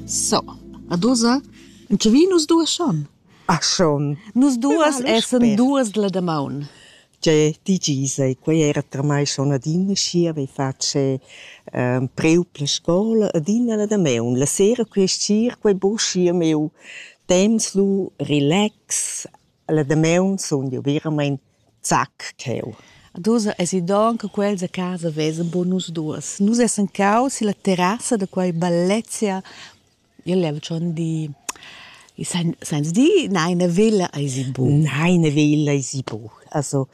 So, ad ussa entschevin nus duas schon. Ah schon. Nus duas essan duas la damaun. Tgei digis ei, quei era per mai schon adina schi avevi fatg ehm, preu per scola adina la damaun. La sera quei sir, quei buca schi a meu temps lu relax, La damaun sun jeu veramein zac cheu. Ad ussa esi donn che quels a casa vesan buca nus duas. Nus essan caus silla terrassa da quei bellezia. Io leva schon di, sein- seins di neina villa eisi buca? Neina villa eisi buca. Also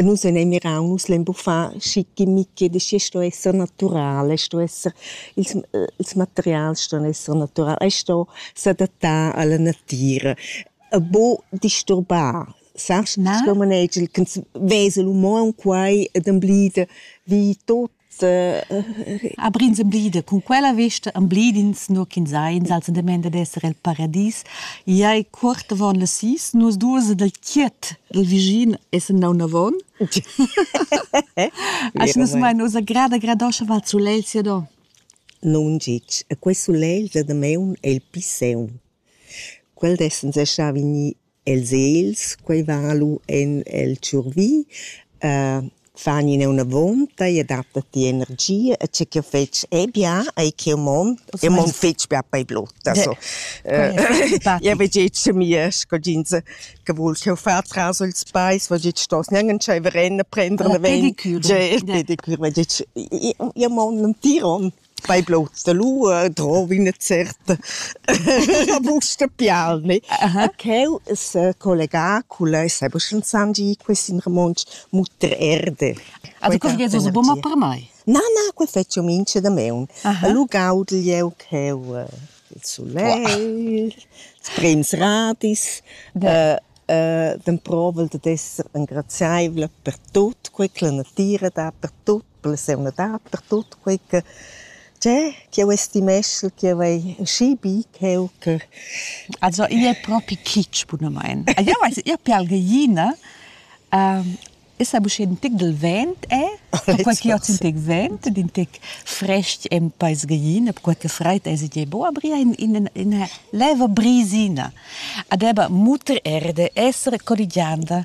nus ein ei mirau, nus lein buca far schichimichi, da schi sto esser natural, ei sto esser, ils, ils materials ston esser natural, ei sto s'adattar alla natira. e buc disturbar, sast? Na? Sco manegel ch'ins vesa l'uman quai ed emblida vi tut. Aber ins emblida cun quella vesta emblidins nur ch'ins ha insatge dement ad esser el paradis. Ei cuort avon las sis, nus duas dal chiet il vischin essen da unavon. As nus mai nos agrada gradoscha val sulel sia do. Non gitg, e quei sulel da dameun è il pli seun. Quel d'essan sè stà vegnì e'ls egls, quai va lu en el tschurvi, fani ina üna vonta, i adatta ti energia e tgè ch'eu fetsch e bien ei ch'eu mon, eu mon fetg bia per blotta so. Eu vez gest cha mia scodinza che voul ch'eu fa tras ils peis, vez gest stos gnanc entscheiver a prender davent. Pedicür. Gest, pedicür, vez gest, eu mon l'entir on. Fai bluts da lua e drovi üna certa busta pial, ne? Ch'eu s'ha collegà culla e saiba sch'insandi quist in romontsch muttrerde. Ah du curriez uss bun per mai? Na, na, quai fetsch eu mincha damaun. E lu gaudel jeu cheu il sulegl, sprems radis, d'emprovel dad esser engraziaivla per tut, quai ch'la natüra dà per tut. per la seunadad, per tut quei che c'è, ch'jeu estimeschel ch'jeu hai schi bi ch'jeu che... Also igl è propi kitsch bunamain. Eu weiß, eu pialgeina es ha uschè ün tic dal vent è, perquai ch'io hoz ün tic vent ed ün tic fresc e'm paisgeina, perquai che fraid es ed è bo, aber ia in ina leva brisina. Ad eba muter erde, essere colligianda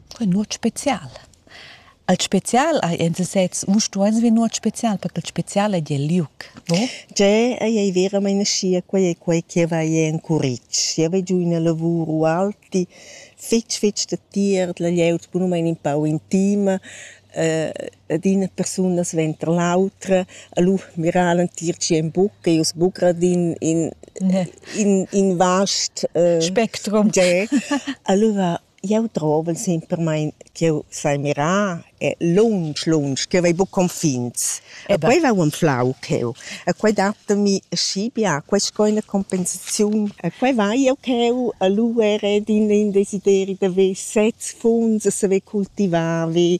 Quei è nuot special. Al special hai en sesez u stueis ver nuot special, perché il special ei el liug, no? Tgè ei ei veramein aschia, quei ei quei che va ei en curitg. Jeu vai giu ina lavur ualti fetg fetg datier dalla glieud bunamein in pau intima, ed ina persuna sventer l'autra, allura mirar l'entir tschien buc, ei uss buc grad in in in in vast spectrum. Tgè, allura Jeu drovel sempermein ch'jeu sai mirar e lunsch, lunsch, ch'jeu vai buca confins. E quei va unflau cheu. E quei datami aschi bia, quei sco ina compensaziun. E quei vai jeu cheu a luer ed in desideri da ver sez funs e saver cultivar vi.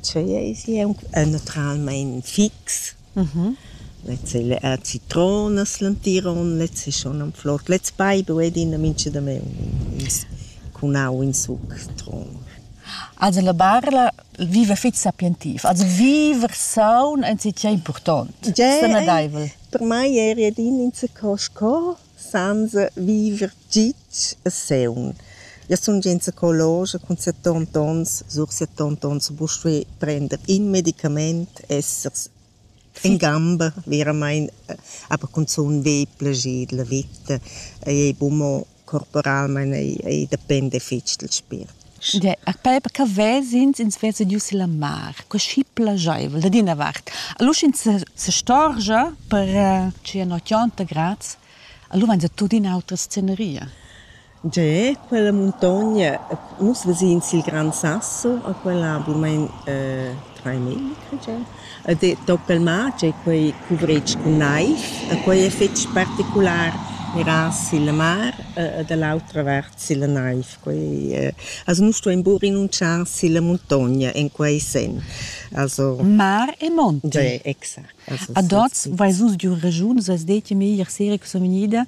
Tschei eis jeu naturalmein fix. Lezza ei la citronas l'entiron, lezza ei schon am flor. Lez baibu ei adina mintga damaun in ins cun au in suc citron. Also la barla viva fitg sapientiv, also viver saun enzatgei impurtont, senadeivel. Per mei eri adina insaco sco Sainza viver git e seun. Io sun già in psicologia cun settond ons, sur settond ons ho pust fer prender in medicamaint, essers in gamba veramaing, aber cunzun be plascher della vita, ei bun mo corporalmaing, ei dependa fich dal spiert. Puspei che ves'ins ins vezediu silla mar, coschi plascheivel dad ina vart. Lu sch'ins se sestorgia per tschia notg aunc graz, lu vein se tuttina autra sceneria. Gie, quella muntogna, nus ves'ins il Gran Sasso a quella bunamein traimilli, cre jeu. Ed toc al mar tgei quei cuvretg cun naiv, quei effect particular era silla mar e da l'autra vart silla naiv. Quei è... Also nu sto imbu rinunzchar silla muntogna in quei sen. Also Mar e monti. Beh, exact. Also Ad oz vais us d'ün ragiun, s'has det meglier sera che sono vegnida,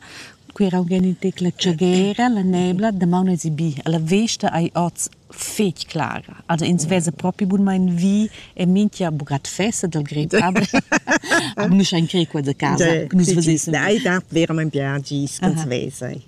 quera ho gen ün tec la tschagera, la nebla, damaun esi bi. La vesta ei oz fetg clara. Also ins vesa propi bunmain vi e minchia bugat fessa dal grecader. Nus ein cre qua da casa, nus vesessen. Ei dat verament bia gis ch'ins vesa.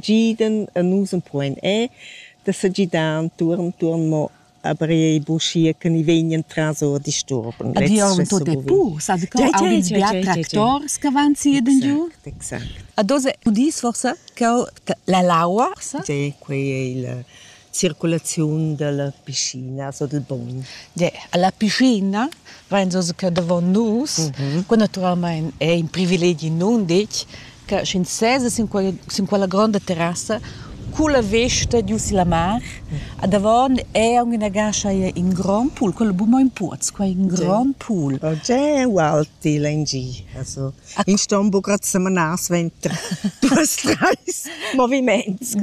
Giden e nus empuoin er da s'agidar entuorn entuorn mo a brei buschia che ni vegnan tras ord disturban. Di auto depot, sa co audis bia tractors che van si ed giu? Exact, exact. A dos udis forsa che la laua? Sì, quei ei la circulaziun dalla piscina so dil bogn. Ja, alla piscina vain so che davon nus, qua natüralmaing è in privilegi nunditg, che sch'ins seza sin quella, sin quella gronda terrassa culla vesta giu silla mar, a davon è aunc ina gascha in grond pool, quello bu mo in puoz, qua in grond pool. Oh, già è ualti lengì. Also In ston buca semanar suenter duas treis moviments.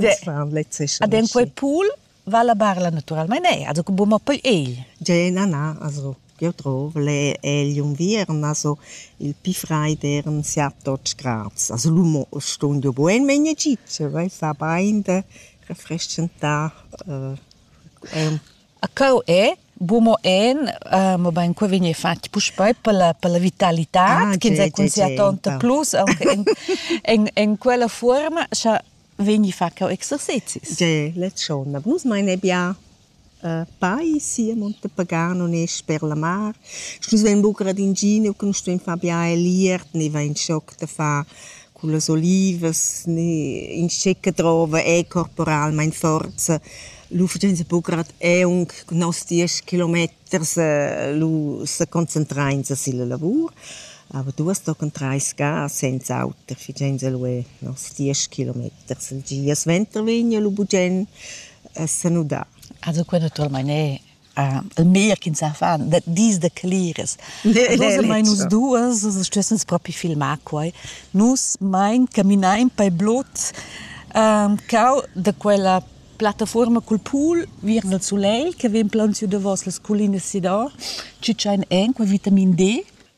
Ad en quei pool va la barla naturalmein ei, also che buca poi egl. Gena na, also io trov le egl unviern, also il pi freid eran siat 12 grads. Also l'umo stun jo buen, ma in Egitto vai fa bein de refreshentà. Äh, Cheu è bu mo en, mobein quei vegn fatg puspei per la per la vitalitad ah, ch'ins è concertonta plus aunc en en en quella fuorma scha vegni fa cheu exercezis. Ge, la tschona. Nus mein ebbia pai sia Monte Pagano ne sper la mar. Nus vein buca ad ingin, nus stuein far bia el iert, ni vein schoc da far Cun las olivas in schecca drova è corporalmain forza. L'ufficienza bugrad è aunc cun nos diesch kilometers lu sa concentrainsa silla lavur. Aber duas tocan trais ga senza auter, figiainsa lu è nos diesch kilometers. Il gia suenter vegn lu bugen a sanudar. Also qua naturalmein è il meglier ch'ins sa far, dis da cleras. nus duas stessens propi filmar quai. Nus mein caminain per blut um, cau da quella plattaforma cul pool viern il sulegl che vegn plaunsiu davos las colinas si da, ci ein en quel vitamin D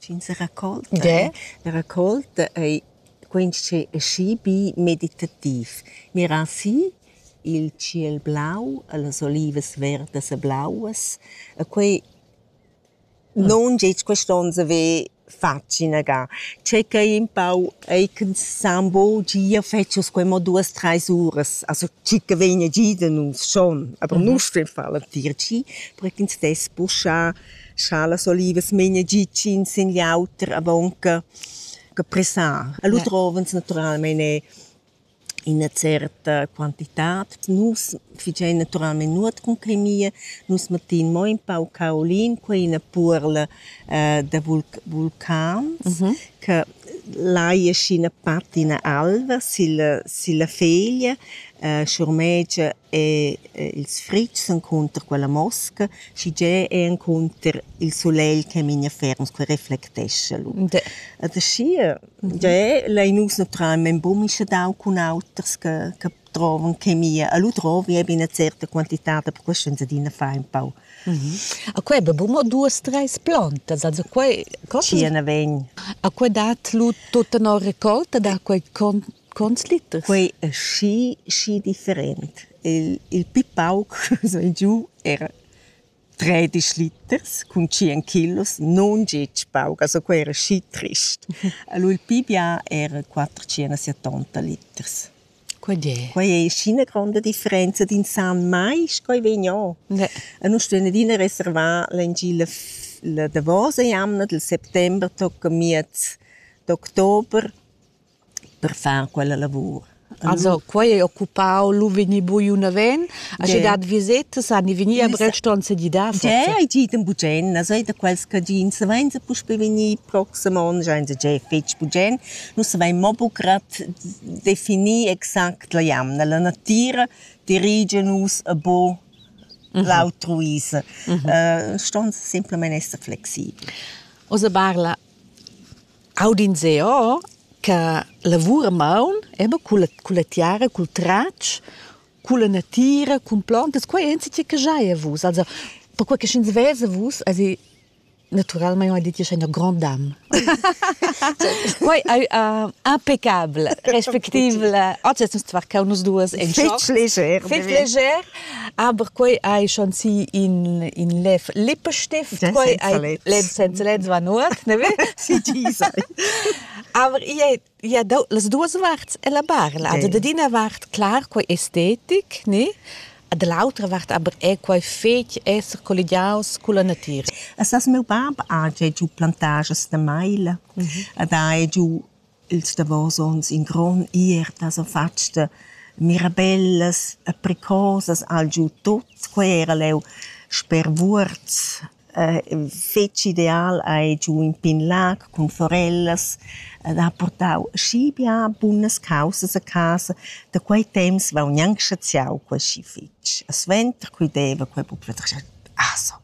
Sch'ins sa racolta, yeah. la racolta ei quintschi aschi bi meditativ. Mirar si il tschiel blau e las olivas verdas e blauas. E quei non gest quest'onn saver fatg inaga. Checai un pau ei ch'ensemble gia fetschas quei mo duas treis uras. Also tgica vegna gia da nus schon. Aber nus sten far la tier tgi, per ch'ins dess puschar Scha las olivas memia gitschin sin l'auter avonca che pressar. E lu trovans naturalmein er ina certa quantitad. Nus fitgein naturalmein nuot cun quei mia. Nus mettein mo in pau caolin, quei ina puorla da vulcans che lai aschi ina patina alva silla silla feglia, schurmegia E ils fritgs encunter quella mosca, schigea è encunter il sulegl che memia ferm sco reflectescha lu. Ed aschia, giae lein nus naturalmein buca mischer dau cun auters che che drovan chemia. E lu drovi eben ina certa quantitad, per questo ins adina fa empau. A quei be buca mo duas, treis plantas, also quei... Tschia na vegn. A quei dat lu tutta una raccolta da quei con Quants liters? Quei ei schi, schi different. Il, il pli pauc sei giu era tredisch liters cun tschien kilos, non gitg pauc, also quei era schi trist. Allora il pli bia era quattrocentosettanta liters. Quei è. Quei ei schi ina gronda differenza d'in san mai sch'ei vegn o. Ne. E nus stuein adina reservar l'engi la, la davosa jamna dil settember tocca miez d'october per far quella lavur. Also quei ei occupau lu vegnir buca naven, aschi dat visetas han vegni a Breston sedidar. Giè ei dit in bugen, also ei da quels cadins savein se puspe vegnir proxim onn, schein se giè fetg bugen. Nus savein mo bugrad definir exact la jamna. La natira dirigia nus a buca l'autruisa. Ston semplamein esser flexibel. Ossa parla Aud'in seo cha lavura maun eba culla culla tiara, cul tratsch, culla natira, cun plantas, quai è insatge che giaja vus. Also perquai che sch'ins vesa vus esi naturalmaing ho dit che scha ina grand'am. Quai ais impeccabel, respectivel. Oggi es nus tvarchau nus duos in choc. Fich leger. Fich leger. Aber quei ei schon si in in lev Lippenstift quei ei lev senza lev war nur ne si ti sei aber ihr ja las duas warts e la barla also de dina wart klar quei estetik ne de l'autra vart aber è quei fetg esser colligiaus con la natura. Essas meu bab ha giu plantages de maila, mhm. da è giu Ils davos onns in grond ierta s'han fatg da mirabellas e pricosas al giu tut. Quei era leu sper Vuorz fetg ideal, hai giu in pign lag cun forellas ed ha purtau schi bia bunas caussas a casa. Da quei temps vegn gnanc saziau quei schi fetg. E suenter, quei deva quei buca pli. Ah so.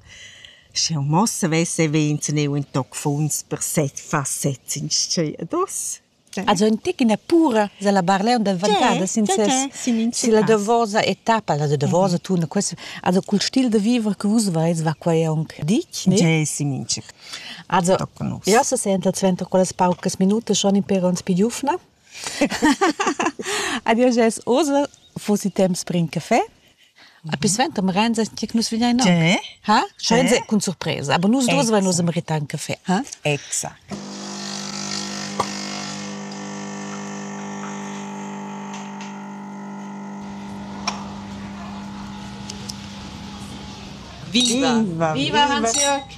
Sch'eau mo savess haver intschgneu ün toc funs per set fasets inschè ad os. Also ün tic üna pura sella Barletta dal Ventadas in ses silla davosa etappa, la davosa tunda. Quest also cul stil da viver che vus avais va quai aunc ditg, ne? Già es in mincha. Also, jau sa senta suenter quellas paucas minutas schon in pêr ons pü giufna. Adio Jess Ursel fossi temps per in caffè. A pi sventa mi renza che nus vigliai no. Tè? Ha? Scho renza cun surpresa, aber nus due vai nus meritar un caffè, ha? Exact. Viva! Viva, Hans-Jörg!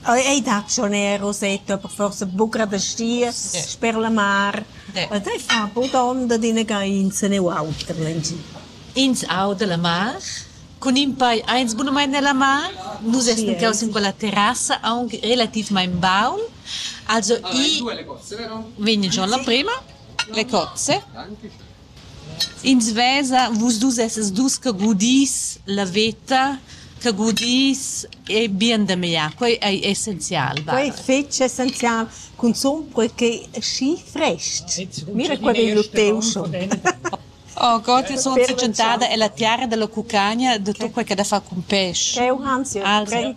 Ei dat schon eir rosetto, aber forsa buca da stiers sper la mar. Ed ei fa bod onda d'inaga insene u auter lengi. Ins auda la mar, cun in pei eins bunamain nella mar. Nus essan caus in quella terrassa aunc relativmaing baul. Also i vegn giò la prema, le cozze. Ins vesa vus dus essas dus che gudis la veta, che gudis e bien da meglier. Quei ei essenzial. Quei è fetg essenzial, cunzun perquei ch'ei schi frest. Mira qua vegn lu teu schon. Oh Gott, io sono tschentada ella tiara della cucagna, de tutto quel che ha da far cun pesce. Cheu Hansi, also.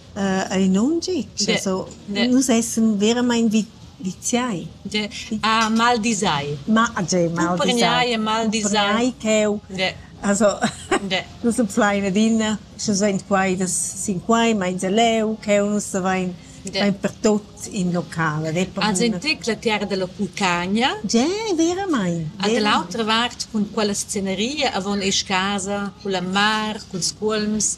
ei non gi. Nus essen veramain viziai. Ah, maldisai. Cumprenai e maldisai. Cheu. Nus en plein adina, sche sein quai sin quai, meins leu, cheu nus savein pertut in local. Has entec la terra della Pulcagna? Ge, veramain. A dell'autra vart cun quella sceneria avon esch casa, con la mar, cun scuolms.